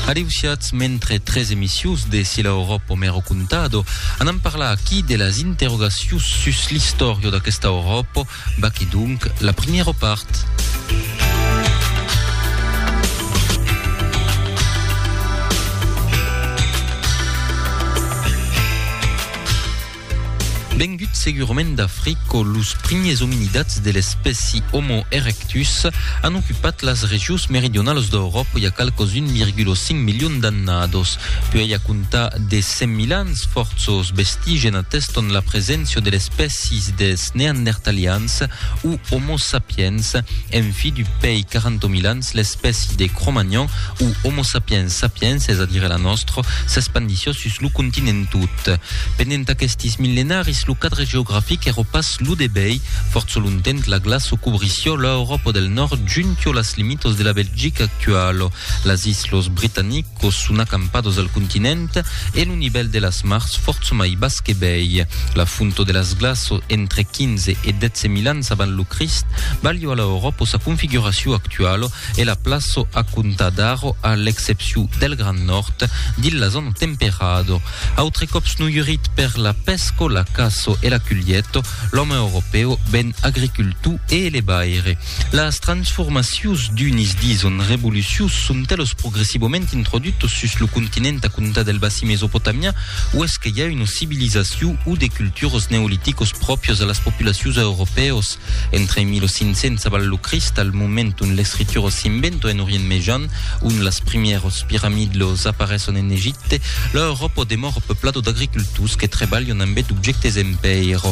Areusiatz mentre tres emissius de Si l'Auròp o mèro contado anam parlar aquí de las interrogacius sus l'istòria d'aquesta Auròp, vaquí donc la primièra part. Vengut segurament d'Africo, los primiers ominidats de l'espèci Homo erectus an ocupat las regions meridionalas d'Euròpa i a qualques 1,5 milions d'annados. Puèi a comptar de 100.000 ans, fòrços vestigen ateston la preséncia de l'espècies dels Neandertalians o Homo sapiens, en fi du pèi 40.000 ans, L'espèci de Cro-Magnon o Homo sapiens sapiens, es a dire la nòstra, s'espandissió sus lo continent tot. Pendent aquestis millenaris lo cadre geografic èra pas lo de bèi, fòrça longtemps la glaço cobrissió l'Euròpa del Nòrd juntió las limitas de la Belgica actuala, las Islas Britanic, Quò son acampados al continent e lo nivèl de las mars fòrça mai bas que bèi. La fonto de las glaços entre 15 e 12 mil ans avant lo Crist balhò a l'Auròpo sa configuracion actualo e la plaço a comptar d'aro a l'excepcion del Grand Nòrd dins la zòna temperado. Autre còps noiurit per la pèsco, la caço e la culhieto, l'òme europèu ven agricultor e elebaire. Las transformacions d'unis dison revolucius son telos progressivament introdutos sus lo continent a comptar del bassin mesopotamian uèsque i a una civilizacion o de culturas neoliticos pròpios a las populacions europèos entre 1500 abans lo Crist al moment ont l'escritura s'inventa en Orient Mejan ont las primièras piramidlos apareson en Egipte l'Euròpa demòra peuplada d'agricultors que trebalhan ambet objèctes en pèira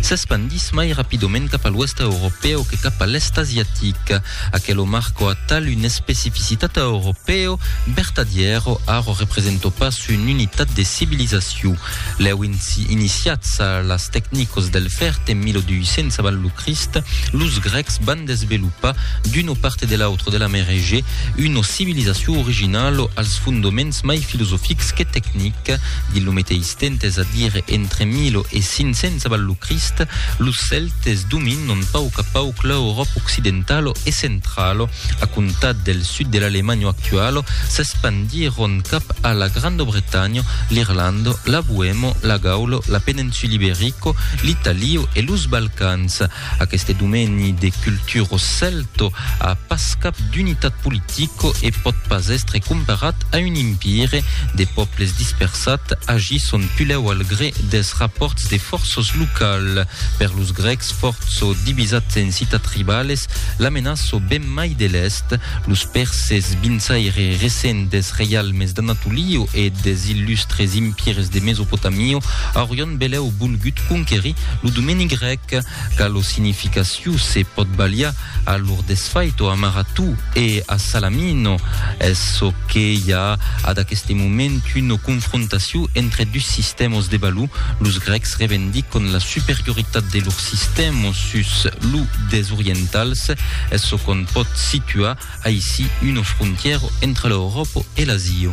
S'espandís mai rapidament cap a l'Oèst Europèu que cap a l'Èst Asiatic. Aquelo marco atal un especificitat a Europèu, vertadièro arro representò pas un unitat de civilizaciu. Lèu iniciats a las tecnicos del fèrt en 1200 avant lo Crist, los Grècs van desvelopar d'uno parte de l'autre de la Mer Egèe una civilizaciu originalo als fondoments mai filosofics que tecnic, dins lo meteis. Tentes a dire entre 1500 abans lo Crist, los Celtes dominon pauc a pauc l'Euròp occidentalo e centralo. A comptar del sud de l'Alemanha actualo, s'espandiron cap a la Granda Bretanha, l'Irlanda, la Boemo, la Gaula, la Peninsula Iberico, l'Italio e los Balcans. Aqueste domeni de culturo celto a pas cap d'unitat politico e pòt pas èstre comparat a un impire. De pòbles dispersat agisson pulèu al gré dels rapòrts de fòrços local. Per los grècs fòrço divisats en citat tribales, la menaço ben mai de l'èst. Los pèrses, vinçaire recent dels reialmes d'Anatolio e des illustres impires de Mesopotamio, aurion belèu volgut conquerir lo domeni grèc. que qu'a lo significaciu se pòt baliar a lor desfait o amaratú e a salamino es çò que i a ad aqueste moment una confrontaciu entre dus sistèmas de balú los grècs revendicon la superioritat de lor sistèma sus lo des orientals es çò qu'on pòt situar aicí una frontièra entre l'Euròpa e l'Asia.